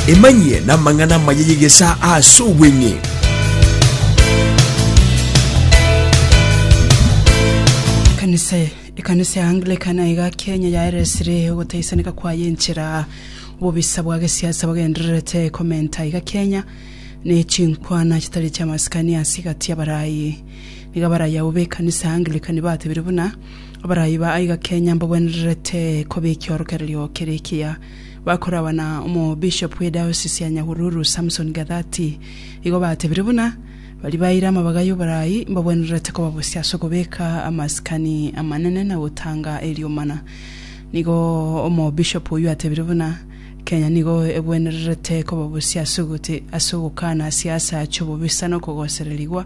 Emanyie namang'ana amaya y'egesaa aase obweng'e. Ekanisa ekanisa ya Anglican aiga Kenya yaeresire ogotaisaneka kwayo enchera obobisa bwa gesiasa bogendererete komenta aiga Kenya ne chinkwana chitari chiamasikani ase egati y'abarayi. Nigo abarayao b'ekanisa ya Anglican batebire buna Abarai ba aiga Kenya mbagwenererete kobekia orokererio kere ekiya. Bakoragwa na omobishop bw'ediocese ya Nyahururu Samson Gathati igo batebire buna bari baire amabaga y'oborai mbagwenererete kobabosia ase okobeka amasikani amanene na gotanga eriomana. Nigo omobishop oyio atebire buna Kenya nigo egwenererete kobabosia ase ogokana siasa chobobisa na okogosererigwa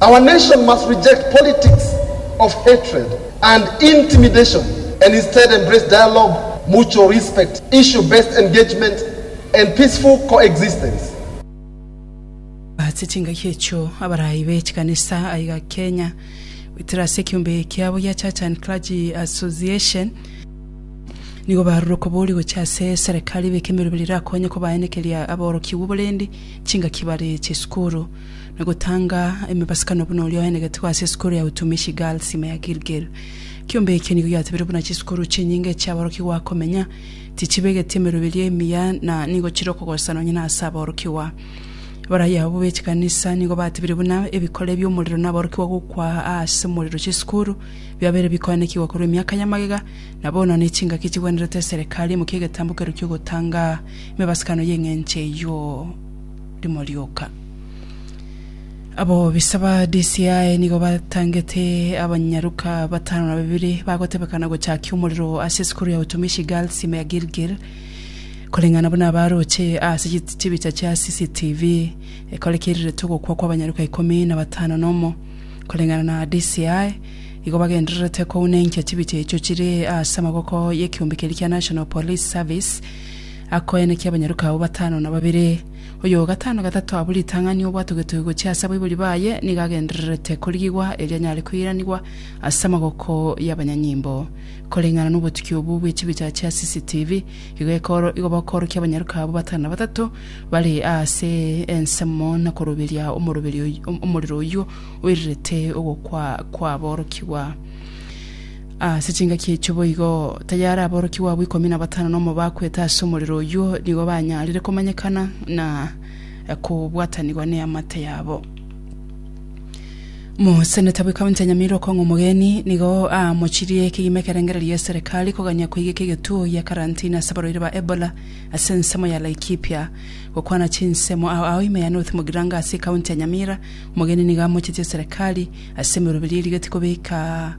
Our nation must reject politics of hatred and intimidation and instead embrace dialogue, mutual respect, issue based engagement and peaceful coexistence. Ase chingaki echio, abaraai be chikanisa aiga Kenya goetera ase ekeombe kiabo gia Church and Clergy Association, nigo barure okobori gochia ase serekari beke emerobera erakonye kobaenekeria aborokigwa oborendi chingaki bare chisukuru. na gotanga emebasakano buna oria oenegete igo ase esukuru ya Utumishi Girls ime ya Gilgil. Kiombe ekio nigo giatebirwe buna chisukuru chinyinge chi'aborokigwa akomenya, tichibegeti emeroberio emiya na nigo chire okogosana onye nase aborokigwa. Abarayia abwo be chikanisa nigo batebire buna ebikore bi'omorero na aborokigwa gokwa aase omorero chisukuru biabeire bikoenekigwa korwa emiaka ya magega na bono nechingaki chigwenerete eserekari imokie egetambo keru ki'ogotanga emebasakano y'eng'encho eyio. Rimo rioka, abobisa ba DCI nigo batangete abanyaruka batano na babere bagotebekana gochakia omorero ase esukuru ya Utumishi Girls ime ya Gilgil koreng'ana buna abaroche ase chit- chibicha chia CCTV ekorekerereto ogokwa kwa abanyaruka ikomi na batano na omo. Koreng'ana na DCI, igo bagendererete kounenkia chibicha echio chire ase amaboko y'ekeombe keria kia National Police Service Akoenekia abanyaruka abwo batano na babere. Oyo o gatano gatato abwo ritang'ani obwatogetwe gochia ase abaibori baye nigo agendererete korigigwa erio anyare koiranigwa ase amaboko y'abanyanyimbo. Koreng'ana nobotuki obwo bwe chibicha chia CCTV, igo ekoro igo bakoorokia abanyaruka abwo batano na batato bare aase ensemo na koroberia omoroberi oyio omorero oyio oirerete ogokwa kwaborokigwa. Ase chingaki echio boigo, tayare aborokigwa abwo ikomi na batano na omo bakwete ase omorero oyio nigo banyarire komanyekana na kobwatanigwa neamate yabo. Moseneta bw'Ekaunti ya Nyamira Okong'o Omogeni nigo aamochirie kegima ekerengererio eserikali kogania koigeka egetuo gia karantini ase abarwaire ba Ebola ase ensemo ya Laikipia. Gokwana chinsemo ao ao ime ya North Mogiranga ase ekaunti ya Nyamira, Omogeni nigo amochetie eserikali ase emeroberi erigeti kobeka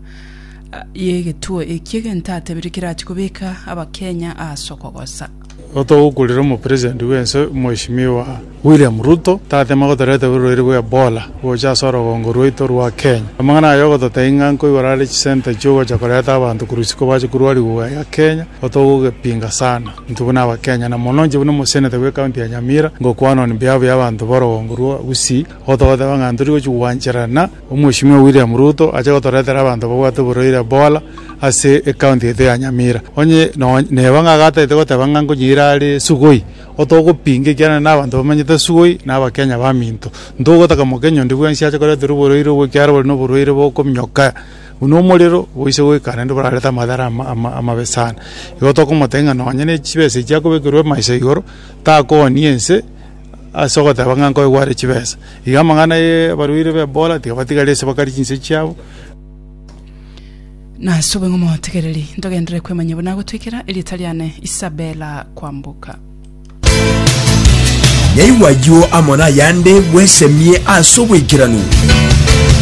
y'egetuo eki egento atebire kerachie kobeka abakenya ase okogosa. Igo togokurera omopresident bw'ense Mweshimiwa William Ruto tateme gotoreta oborwaire bwa Ebola gocha ase orogongo rwaito rwa Kenya. Amang'ana aya ogototebia ng'a nko igoro are chisenta chiogocha koreta abanto korwa isiko bache korwa rigugwa ya Kenya igo togogepinga sana intwe buna abakenya na mono inche buna omoseneta bwe county ya Nyamira ngokwana on behalf y'abanto borogongo rwa Gusii igo togoteba ng'a ntorigochi gwancherana Omweshimiwa William Ruto ache gotoretera abanto babwate oborwaire Ebola ase ecounty yaito ya Nyamira. Onye nonye neba ng'a agatagete goteba ng'a nkonyiira are sugoi, otogopinga ekiagera nere nabanto bamanyete sugoi na abakenya baminto. Ntogotaka mokenya onde bwensi ache koreterwa oborwaire obwo ekiagera bore noborwaire bokominyoka buna omorero boise goika naende borarete amadhara ama amabe sana. Igo tokomotebia ng'a nonye ne chibesa echi akobekerwa emaiso igoro takooni ense. Ase ogoteba ng'a nkoigware chibesa, iga amang'ana y'abarwaire b'Ebola tigabatigaria ase bakari chinswe chiabo. Nase oboing'o motegereri, ntogenderere kwemanyia buna agotwikera erieta riane Isabela kwamboka. Yaigwa ayio amo nayande bwesemie ase obwaikeranu.